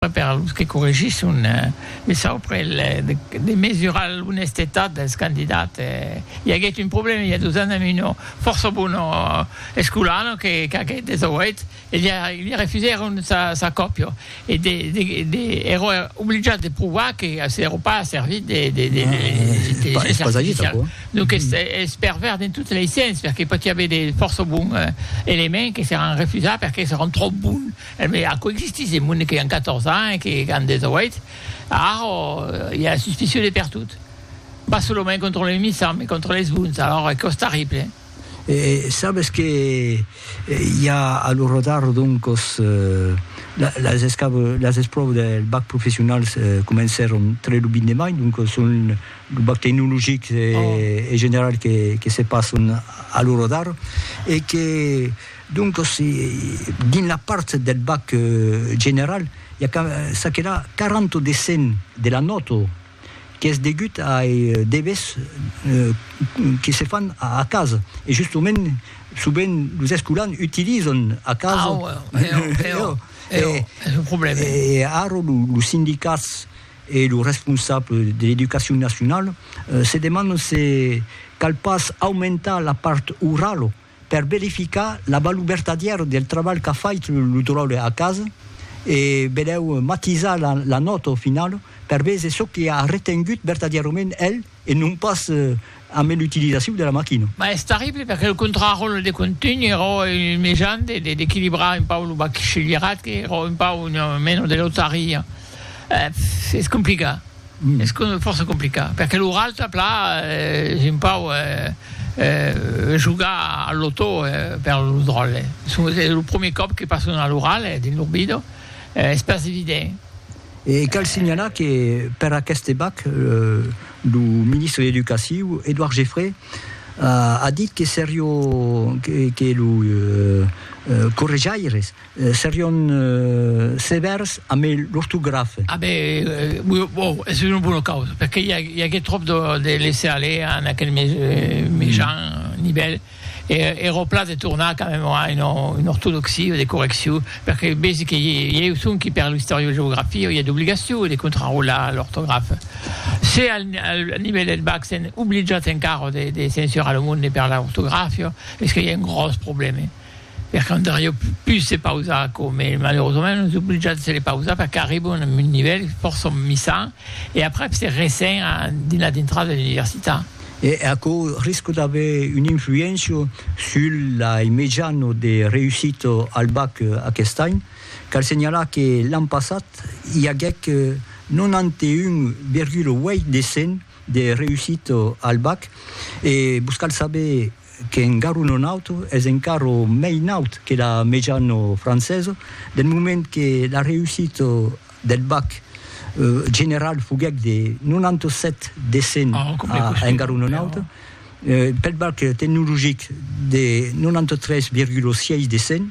Per los que corregisson, me sauprel de mesurar l'onestetat dels candidats. I aguèt un problèma i a dos ans amb una fòrça bona escolana que qu'aguèt 18 e li refusèron sa còpia e de ero obligat de provar que s'ero pas servit de l'intelligencia artificial. Donc es pervèrs dins totes lei sens perque pòti aver de fòrça bons elements que seràn refusats perque seràn tròp bons. Emé, aquò existís de monde que an 14 ans e que an 18, alors i a la suspicion de pertot. Pas solament contra los missants, mai contra les bons, alors aquò es terrible. E sabes que i a a lo rotar doncos las espròvas del bac professionals comencèron tre lo 20 de mai, doncos son lo bac tecnologic e general que se passon a lo rotar e que Doncas, dins la part del bac general, i a çaquelà 40 de 100 de la nòta qu'es degut ai devers que se fan a casa. E justement, sovent los escolans utilizan a casa. E ara los sindicats e los responsables de l'educacion nacionala se demandan se cal pas aumentar la part orala per verificar la valor vertadièra del trabalh qu'a fait lo dròlle a casa e benèu matisar la, la nòta au final per véser çò que a retengut vertadièrament el e non pas amé l'utilizacion de la maquina. Mas es terrible perque lo contraròtle de contunh ero un mejan de, de, d'equilibrar un pauc lo bachelierat que ero un pauc una mena de lotaria. Epf, es complicat. Es fòrça complicat, perque lo ralta pla es un pauc jogar al lotò per lo dròlle. Es lo premier còp que passo a lo ralta dins lo bido, es pas evident. E cal signalar que per aqueste bac, lo ministre de l'Educaciu, Edouard Geffray, a dit que seriá que los correjaires Serion sevèrs amé l'ortografe. A ben, o, es una bona causa, perque i agué tròp de laisser aller en aquel mejan nivèl, e era au pla de tornar quand même a una ortodoxia o de correccion, perque vesi que i eu sonqui per l'istoriogeografia i a d'obligacion de contrarolar l'ortografe. Se al nivèl del bac sèn obligat encara de censurar lo monde per l'ortografia, es que i a un gròs problème. Per cantar jo pus de pausa aquò, me malerosament nos oblijats de le pausar perque arribo a un nivèl fòrça misan e aprèp se resen a dins la dintrada de l'universitat. E aquò risco d'aver una influéncia sul lai mejano de reusit al bac aquest any. Cal senhalar que l'an passat i aguèc 91,8 de 100 de reusit al bac e vos cal saber qu'en garu non naut es encara mei naut que la mejana francesa, del moment que la reussita del bac general foguèc de 97 de 100 en garu non naut, pel bac tecnologic de 93,6 de 100.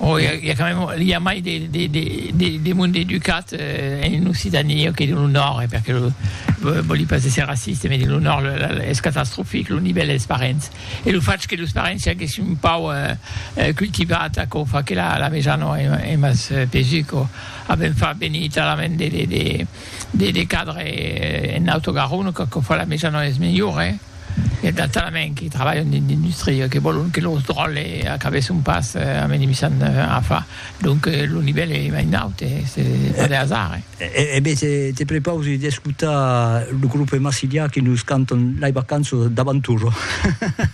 O i a, i a quand même, i a mai de, de, de, de, de monde educat eh, en Occitanie que de lo nòrd, eh, perque lo, vo- voli pas èsser raciste, mais de lo nòrd lo- la- la- es catastrofic lo nivèl dels parents. E lo fach que los parents siaguèssi un pauc eh, eh, cultivat, aquò fa que la, la mejana eh, es mas eh, pesu, quò a ben far venir talament de, de, de, de, de cadres eh, en Auto Garona, quò, quò fa la mejana es melhor, eh. E tà talament que trabalhan dins l'industria que vòlon que los dròlles acabèsson pas amenimissant afa. Donc lo nivèl es mai naut, es pas de hasard. E be te prepausi d'escotar lo grupe Massilia que nos cantan Lei vacanças d'avanturo.